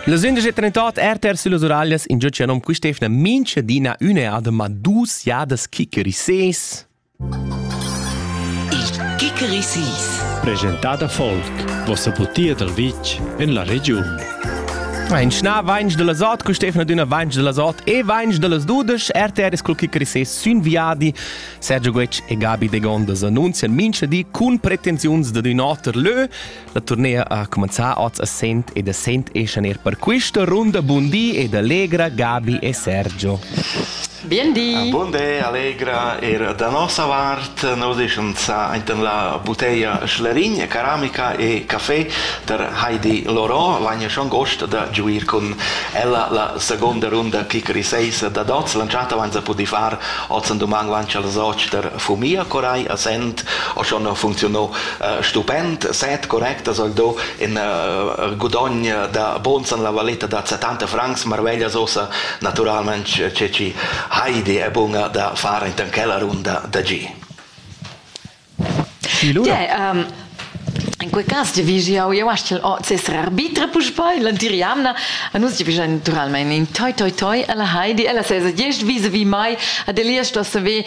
Las 11.38 RTR sulle Uraglias in giucia nom quistefna minchadina üneadema dus jadas Kikerisees. Il Kikerisees. Presentada folk, vossa butia dal vitg en la regiun. Ein schna vainch de la sot, Stefan d'una vainch de la sot e vainch de las dudesch, RTR es cul Kikerisees sün viadi. Sergio Guec e Gabi de Gondas annunzian mincha di cun pretensiuns de d'ün oter lö. La turnea ha cumanzà oz a Sent ed a Sent eschan er per questa runda Bundi ed Allegra, Gabi e Sergio. Biendi! Ah, buondé, Allegra, er da nossa vart nos eschan sa intan la buteia Schlerin, Ceramica e Café der Heidi Loro, l'anno schon gost da giuir con ella la seconda runda Kikeri 6 da Dots, lanciata vanza pudi far oz an doman lancia al soc der Fumia Corai a Sent, o schon funzionò stupend, set correct soll do in uh, gudogn da buns en la valeta da 70 francs marveglia sosa naturalment ce ci Heidi è bunga da fare in tanchella runda da G. Yeah, um, In quei cas giavigiau jeu astgel ord seser arbitre puspei l'antiriamna a nus giavigian naturalmein in toi toi toi alla Heidi ella sesa gest vis vi mai ad Elias sto saver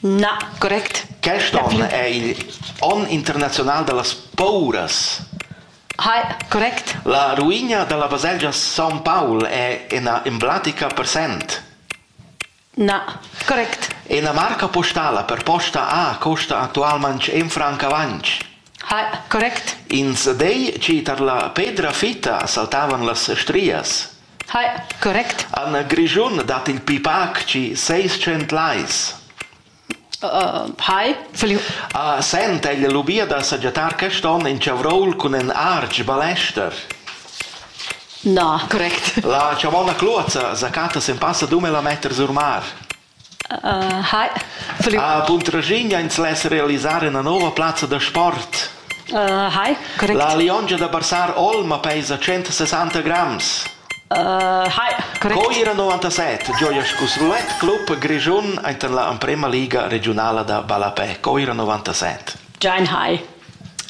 Na, correct. Quest onn è il onn internaziunal da las pouras. Hai, correct. La ruina da la baselgia Son Paul è ina emblatica per Sent. Na, correct. Ina marca postala per posta A costa actualmain en franc avantg. Correct. Ins dei chi tar la pedra fitta saltavan las strias. Correct. En Grischun dat il pipac chi seis tschient lais. A Sent egl lubia da sagiatar quest on in chavroul cun in artg balester. Na, correct. La chavona cluazza zacata sem passa dume la metter sur mar. Hi. Ah, cun Tragigna ins less realisar ina nova plazza da sport. Uh, hi, correct. La liongia da Barsar Olma pesa 160 grams. Uh, hi, correct. Co era 97, gioia scus roulette club Grischun enten la emprema liga regionala da Ballapè. Co era 97? Giant high.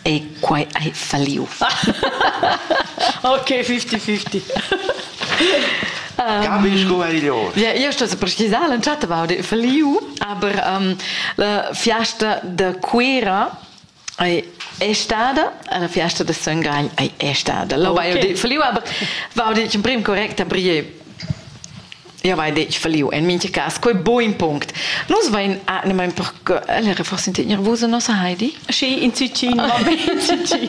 E quai hai falliu. Ok, 50-50. Gabi sco egl ord. Ja, io sto precisar l'entschatta va de falliu, aber um, la fiasta da Cuira ei è stata la fiasta da Son Gagl è stata. Lo okay. vai di falliu, aber va di in prim correct a brie jau hai detg falliu en mintga cas quei buin punct nus vein animain per ellere forse in nervosa nossa Heidi sì in Cicin va bene Cicin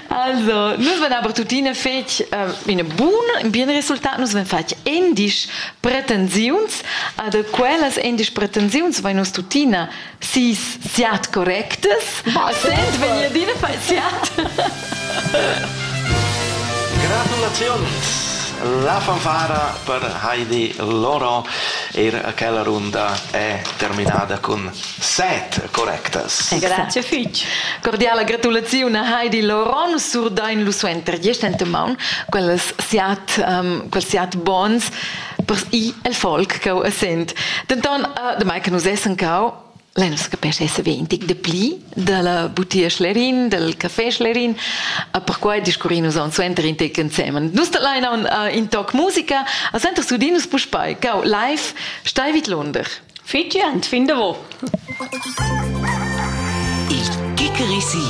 Also, nus ven aber tutine fetg äh, in bun, in bien resultat, nus ven fatg endisch pretensiuns, ad quellas endisch pretensiuns vai nus tuttina sis siat correctas, Ma sent vegnir adina fai siat. Gratulazions! La fanfara per Heidi Loro er aquella runda è terminada con set correctas. Grazie fitch. Cordiala gratulazione a Heidi Loro, nu surdain lu suenter diesch enta maun quels siat um, quels siat bons per ir el folk cheu a Sent. Denton, damai che nus essan cau, Lei non si capisce se ve un tic de pli dalla butia Schlerin, del café Schlerin, a perquai discurri nus on suenter in tec ensemen. Nus da Leina uh, in toc musica, a senter sudinus puspei, cau live, stai vid Lunder. Fitje, und finde wo. Il Kikerisi.